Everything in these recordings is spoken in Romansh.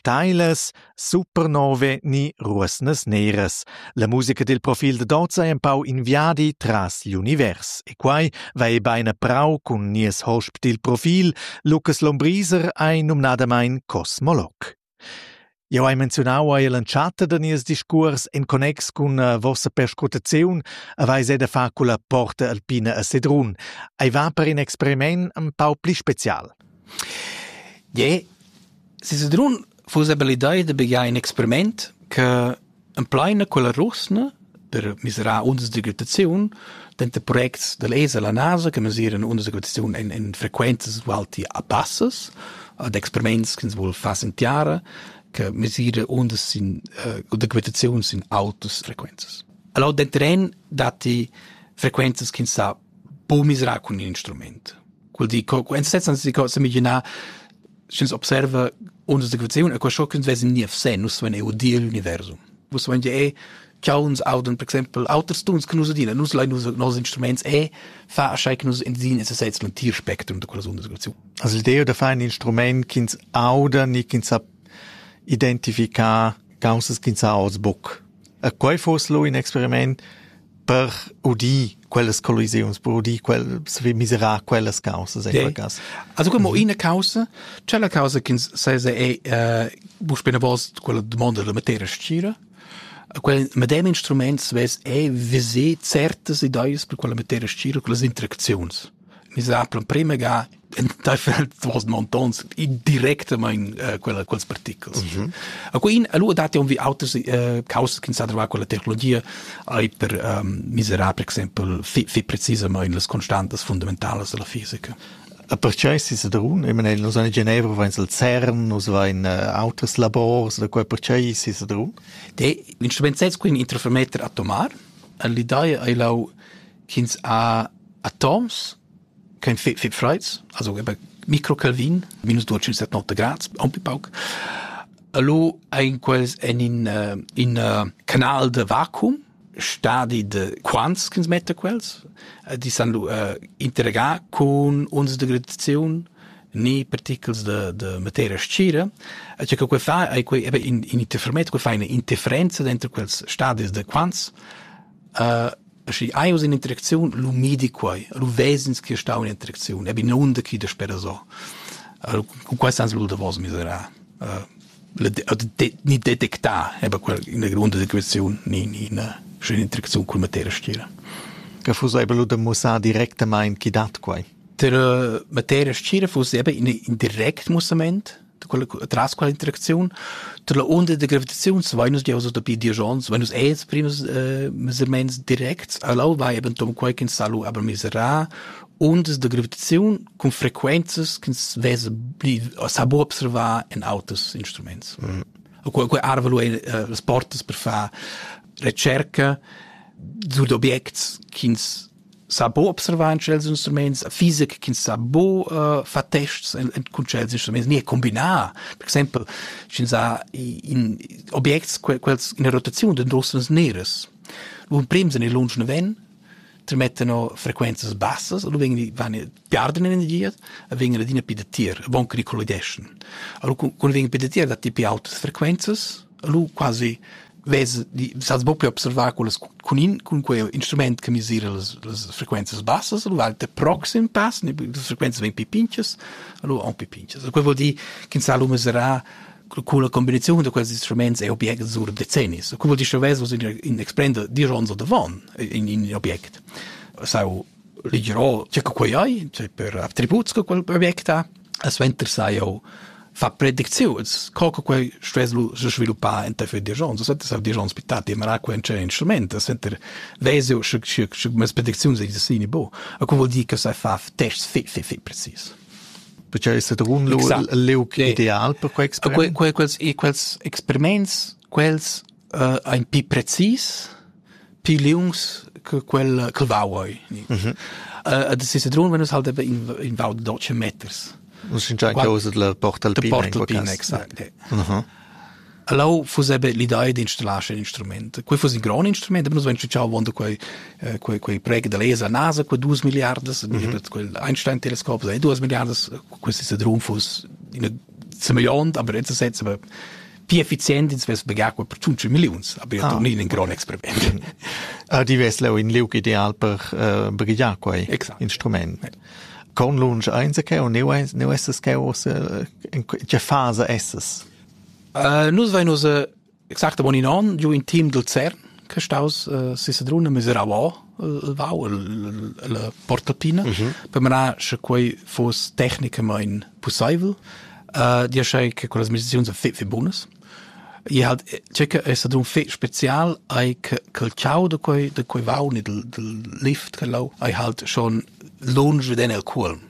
Steilas, supernove ni ruosnas neras. La musica dil profil da Doza è empau in viadi tras l'univers e quai va ei bein a prau cun nies hosp dil profil, Lucas Lombriser, ei numnadamain cosmolog. Jau hai menziunau ei l'entschatta da nies discuors en connex cun uh, vossa perscrutaziun aveis ei da far culla porta alpina a Sedrun. Ei va per in experiment un pau pli special. Je, se Sedrun fuss abilidai da begiar in experiment che Empleina quella rusna per mesirar undas d'agitaziun denter projects dall'ESA la NASA che mesiran undas d'agitaziun en en frequenzas ualti a bassas ad experiments ch'ins vul far sin tiara che mesira undas sin eh, d'agitaziun sin autas frequenzas. Allora denter en datti frequenzas ch'ins sa po mesirar cun in instrument. Quel di, en se senza si cosa imaginar sch'ins observa undas d'equaziun, e qua schon können wir nie sehen, nus wenn eu di l'universum. Vus wenn je cha uns auden per exempel auters tuns che nus adina, nus lai nus nos instruments e fa schei che nus endin es seits un tier spectrum de quella undas d'equaziun. Also l'idea da fare ein Instrument ch'ins auda, ni ch'ins sa identificar causas ch'ins sa oz buc. E quei fuss lu in experiment per udir quellas collisiuns, per udir quellas, miserar quellas causas. Ei. Also como mhm. ina causa, c'è la causa che sesa è eh, bu spina vost quella domanda della materia scira, quel medem instrument svess è visé certas ideas per quella materia scira, quelle interazioni. Mi sa prima ga enteifer duas montons directamaing uh, quella, quels particles. Mm -hmm. A quin allura dati on vi auters uh, causas che sa trovare con la tecnologia ai per um, miserar per exempel fi, fi precisamente las constantes fundamentales della fisica. A perciò si sa drun, ich meine, nus in Geneva vains al CERN, nus vain uh, auters labors, da quai perciò si sa drun? De, l'instrument sez quin interfermeter atomar, l'idea è lau ch'ins ha atoms kein fit fit freiz also eben microcalvin minus dual set 90 grad un peu pauc allo ein quels en in uh, in uh, canal de vacuum stadi de quants kins mette quels eh, die san uh, interregar con uns de gradazione ni particles de, de materia scira e cioè che quei fa ai quei eben in in interferometro quei fa eine interferenza dentro quels stadis de quants Schi hai uss in'interacziun, lu midi quei, lu ves'ins che stau in interacziun, ebi nunder ch'i daspera so. Cun quei sans lu davos miserar. Ni detectar, eber quella ina gronda equaziun, ni ina sch'ina interacziun cun materia stgira. Che fuss eber lu da mussar directamain chi dat quei? Der materia stgira fuss eber in direct mussament, tras quella interacziun tra la onda da gravitaziun vein nus giaus dapi diesch onns vein nus els prims eh, mesements directs allau vai eben tom quei ch'ins sa lu aber miserà ondas da gravitaziun cun frequenzas ch'ins vesa sa bo observar en auters instruments mm. quei quei arvelu ei eh, las portas per far recerca zu d'objects ch'ins sa bo observar in chels instruments fisic ch'ins sa bo uh, fa tests en, en cun chels instruments ni combinar per exempel sch'ins ha in objects quels in rotaziun den rossens neres un prems en il lunsch ven tremettano frequenzas bassas und wenn die garden energias vegn adina pi datier von che collideschen allora quando vegn pi datier datti pi autas frequenzas lu quasi vez sas bo pli observar quellas con in con quei instrument che misira las, las frequenze bassas lu alte proxim pass le frequenze vegn pi pinches lu un pi pinches quel vuol dir che sa lu meserà con la combinazione di questi strumenti e obiecti sur decenni quel vuol dire che vez in exprende di ronzo de von in, in object sau Ligerò tgè che quei ei, cioè per attributs che quel project ha. E suenter sai jau far predicziuns, co che quei stuess se sviluppar enteifer far digiuns. Suenter sav digiuns bittà, ti marar quei c'è instrument, suenter ves jau sche sche sche mes predicziuns ei dessini bo. E co vuol dir che sai far tests fi fi fi precis. Perché è stato un leu ideal per quei experiment? Quei quels quels experiments quels uh, ein pi precis pli liungs che quel che vau ei. E de Cicerun venus halt in in vau de 12 meters. Un sincer causa la porta al pin. Porta al pin, exact. Allau fu sebe l'idea di installare un instrument. Quei fu un gran instrument, aber nus venus ciao vonda quei quei quei prega da lesa NASA quei 2 miliardas, quel Einstein Teleskop, e 2 miliardas, questi Cedrun fu in semillont, aber jetzt setze aber pi efficient ins vess pagar quel per tschunci milliuns, aber ja ah. tornin in gran experiment. Ah, di vess leu in liug ideal per uh, brigliar quei exact. instrument. Ja. Con lunsch eins che o neu eins neu esses che o se in che fase esses? Uh, nus vein us exact bon in an giu in team dal CERN che staus uh, sisadruna miserau el vau la portatina per manar sche quei foss tecnicamain pussaivel uh, dir sei che con las meditaziuns fe fe bonas e halt c'è che è stato un fe spezial ai che che ciao da quei da quei vau ni del del lift che lau ai halt schon lunge veden el cuolm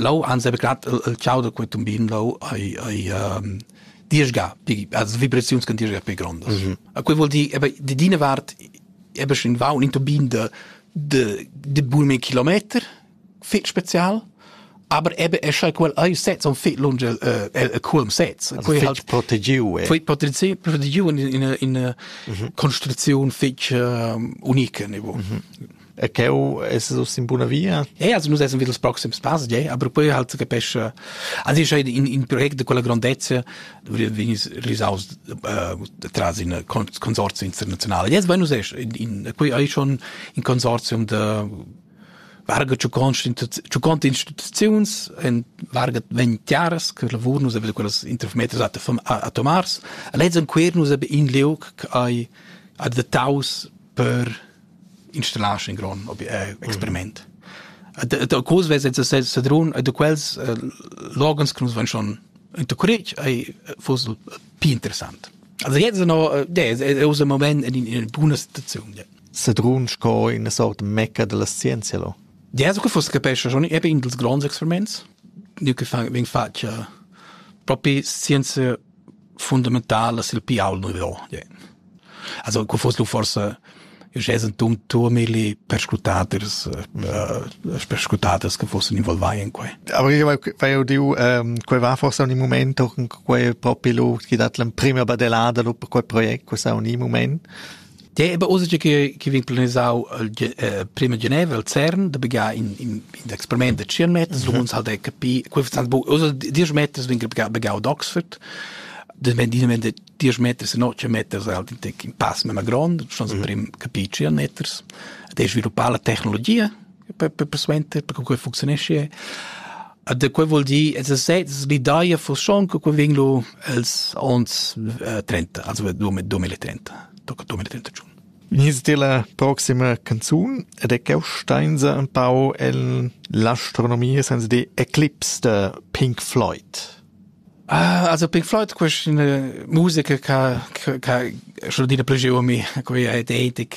Lau ans heba grat il chau da quei tumbin lau ei ei diesga pli as vibraziuns can diesga pli grondas. A quei vuol dir eba di d'ina vart eba schon va un tumbin de de de bulme kilometer fit spezial aber ebe es schai quel ei sets on fit lunge el el culm sets quei halt protegiu eh. fit protegiu protegiu in in in construziun fich unique niveau E cheu es es uss in buna via? Eh, also nus essan vid ils proxims pass, ja, aber poi halt capescha also ich in in project de quella grandezza vegn risaus tras in consorzio internazionale. Jetzt bueno es in in poi hai schon in consortium de varga ciu cont instituziuns en varga ventiaras che lavur nus aveva quellas interfometers atomars a lezzen quer nus in liug ai ad de taus per installar in grond eh, experiment. Da, da cos vez se sedrun da quels uh, l'organs che nus van schon intercourage ei fosse più interessant. Also jetzt no è usa moment in, in buona situazione. Ja. Sedrun sco in sort mecca della scienza lo. Ja, so che fosse capisce schon eben in dels grands experiments. Io che fang veng faccia proprio scienza fundamentala sil pial nouveau. Also quel foss lu forsa jez entum turmili perscrutaders uh, perscrutaders che fossen involvai in quei. Aber io vai udiu um, quei va forse un moment auch in quei propi lu chi dat l'em prima badelada lu per quei project questa un moment Deva ussa che che vegn planisau il eh, prima Geneva al CERN da begar in in experiment da 100 meters, du uns halt e capi, quei vezan bu ussa 10 meters vegn begar begar ad Oxford. De men di men 10 meters e no 100 meters halt in pass mema grond, schon so prim capi 100 meters. De sviluppar la tecnologia per per suenter per che funzionesce. da quei vuol dir es sez l'idea fusiun che quei vegn lu els ons eh, 30 also 2030 tocca 2031 Venies ti la proxima canzun ed è cheu steinsa un pau en l'astronomia senza di eclipse de Pink Floyd. Ah, also Pink Floyd questa è musica che che che schon dire più giù a me, quella è etica.